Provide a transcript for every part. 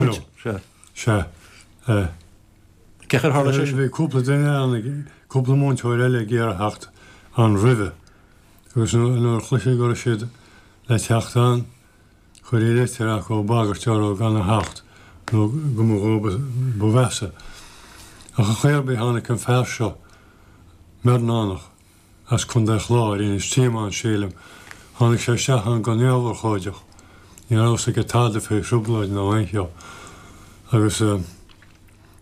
Bhuel, sea, sea. Eh. Cén chaoi ar tharla sé sin? Bhí cúpla duine ann, cúpla múinteoir eile ag iarraidh theacht ann roimhe agus nuair a chloistí go raibh siad le teacht ann, cuirtí leitir acu ag bagairt orthu gan a theacht nó go mba dhóibh ba mheasa. Ach ar chaoi ar bith tháinig an fear seo, Mearnónach. as Contae an Chláir, Inis Díomáin, sílim, tháinig sé isteach ann go neamhurchóideach, ní raibh fhios aige tada faoi thrioblóid ná aon cheo. Agus eh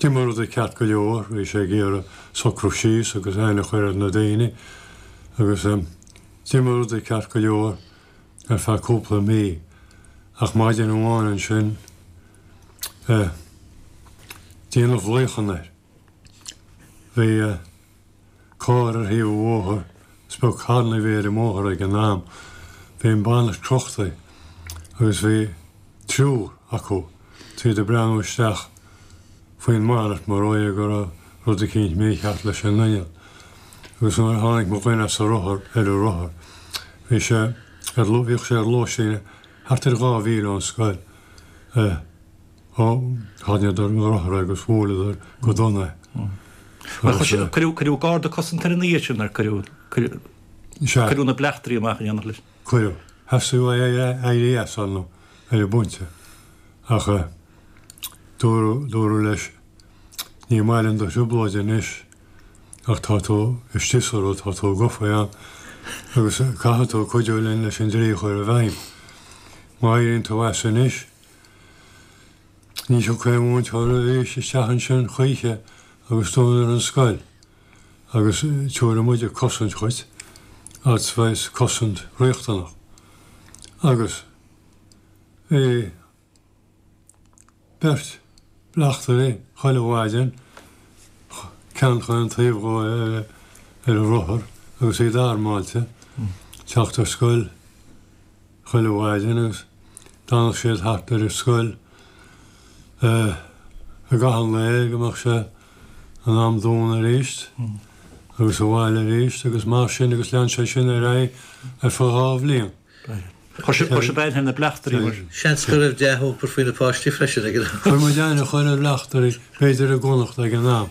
d'imigh rudaí ceart go leor, bhí sé ag iarraidh socrú síos agus aithne a chuir ar na daoine agus eh d'imigh rudaí ceart go leor ar feadh cúpla mí ach maidin amháin ansin eh déanadh luíochan air. Bhí eh. carr ar thaobh an bhóthair, is beag carranna a bhí ar an mbóthar ag an am, bhí an bonnet crochta agus bhí triúr acu thíos ag breathnú isteach faoin mbonnet mar dhóigh dhe go raibh rud eicínt mícheart leis an inneall. Agus nuair a tháinig mo dhuine as a rothar, ar a rothar, bhí sé ar, bhíodh sé ar lóistín thart ar dhá mhíle ón scoil. Eh. Tháinigeadar i ngreim ann agus bhuail siad go dona é. Cuireadh garda cosanta air an oíche sin, ar cuireadh na bleachtairí amach in éineacht leis. Cuireadh. Theastaigh uaidh éirí as ar an bpointe ach dúradh leis 'ní maith linn do thrioblóid anois ach tá tú istigh sa rud, tá tú gofa ann agus caithfidh tú cuidiú linn leis an dlí a chur i bhfeidhm. Má éiríonn tú as anois, Ní thiocfaidh aon mhúinteoir arís isteach ansin choíche agus dúnfar an scoil agus tabharfaidh muide cosaint dhuit, arts vice, cosaint riachtanach. Agus bhí beirt bleachtairí chuile mhaidin, ceann chaon taobh dhó ar a rothar agus iad armáilte, ag teacht ar scoil, chuile mhaidin agus d'fhanadh siad thart ar an scoil i gcaitheamh an lae go mbeadh sé in am dúnta arís agus abhaile arís agus mar sin agus lean sé sin ar aghaidh ar feadh dhá bhliain. Chuir sé beannacht ar na bleachtairí mar. Seans go raibh dea-thionchar ar na páistí freisin ag an am. Chuir muid aithne a chur ar bhleachtairí B'fhéidir i gConnachta ag an am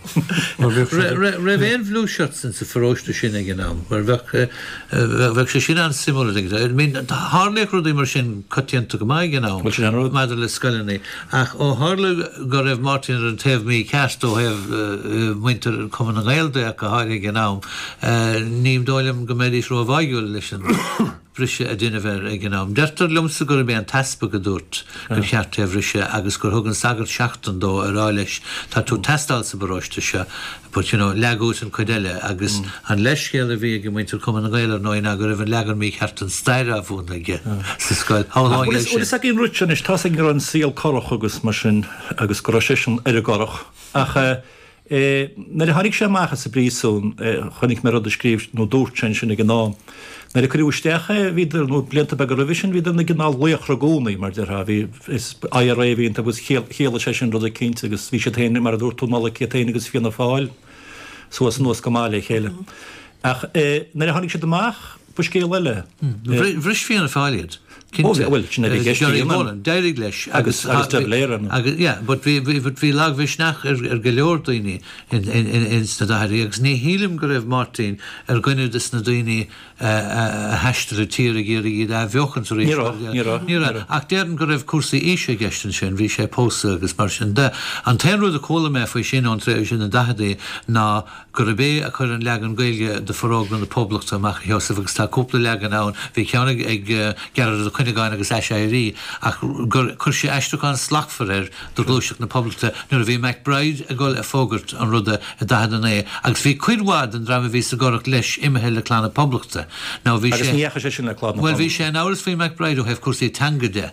mar bheadh sé. An raibh aon Blueshirts in sa pharóiste sin ag an am mar bheadh, bheadh sé sin an-suimiúil, I mean tharlaíodh rudaí mar sin coitianta go maith ag an am maidir le scoileanna ach ó tharla go raibh Máirtín ar an taobh mícheart ó thaobh muintir Chumann na nGael de ach go háirithe ag an am ní dóigh liom go mbeidís róbháidhiúil leis an bhriseadh a deineadh air ag an am. Deirtear liomsa gurb é an t-easpag a dúirt gur cheart é a bhriseadh agus gur thug an sagart seachtain dó a rá leis tá tú ag teastáil sa bparóiste seo but you know leag uait an cuid eile agus an leithscéal a bhí ag muintir Cumann na nGael ar ndóigh ná go raibh an leagan mícheart den stair á mhúineadh aige sa scoil. How long is Bhfuil fhios ag an rud anois, tá fhios againn go raibh an saol corrach agus mar sin agus go raibh seisean ar an gCurrach ach eh. é. Nuair a tháinig sé amach as an bpríosún chonaic mé rud a scríobh nó dúirt sé ansin ag an am. Nuair a cuireadh isteach é, bhíodar, nó blianta beaga roimhe sin, bhíodar ina gcineál laochra i gcónaí, mar a déarfá. Bhí, is IRA a bhí iontu agus chiallaigh sé sin rud eicínt agus bhí siad féin, mar a dúirt tú Nollaig, iad féin agus Fianna Fáil suas anuas go maith le chéile. Ach nuair a tháinig siad amach, Ba scéal eile é. Bhris Fianna Fáil iad, cinnte. Bhuel, sin a bhí i gceist. Gerry Boland, d'éirigh leis. Agus De Valera ann. Agus, yeah, but bhí, bhí, but bhí lagmhisneach ar, ar go leor daoine in, in, in, in sna daicheadaí agus ní shílim go raibh Máirtín ar dhuine de sna daoine a, a, a thaistil an tír ag iarraidh iad a athbheochaint arís. Ní raibh, ní raibh. Ní raibh. Ach déarfainn go raibh cúrsaí aoise i gceist ansin, bhí sé pósta agus mar sin de. An t-aon rud a chuala mé faoi sin ón tréimhse, na daicheadaí, ná, gurb é a chuir an leagan Gaeilge de Forógra na Poblachta amach a Sheosaimh agus tá cúpla leagan ann, bhí ceann ag Gearóid Ó Cuinneagáin agus Aiséirí, ach gur chuir sé aistriúchán slachtmhar air do Ghluaiseacht na Poblachta nuair a bhí MacBride ag dul ag fógairt an ruda i 49 agus bhí cuid mhaith den dream a bhí sa gCurrach leis imithe le Clann na Poblachta nó bhí sé. Agus ní dheachaigh seisean le Clann na Poblachta. Bhuel bhí sé in amhras faoi MacBride ó thaobh cúrsaí teanga de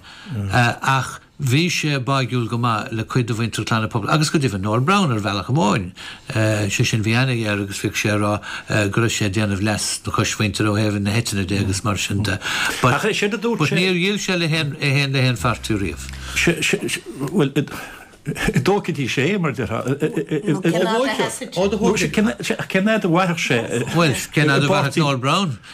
ach. Bhí sé báidhiúil go maith le cuid de mhuintir Chlann na Poblachta agus go deimhin Noel Browne ar bhealach amháin. Sé sin bhí aithne aige air agus bhíodh sé ag rá go raibh sé ag déanamh leas na coismhuintire ó thaobh na heitinne de agus mar sin de. But níor dhíol sé le haon pháirtí riamh. Bhuel, an dtógfaidís é, mar a déarfá. Cén fhad a sheasfadh sé? Cén fhad a mhairfeadh sé? Bhuel, cén fhad a mhairfeadh Noel Browne?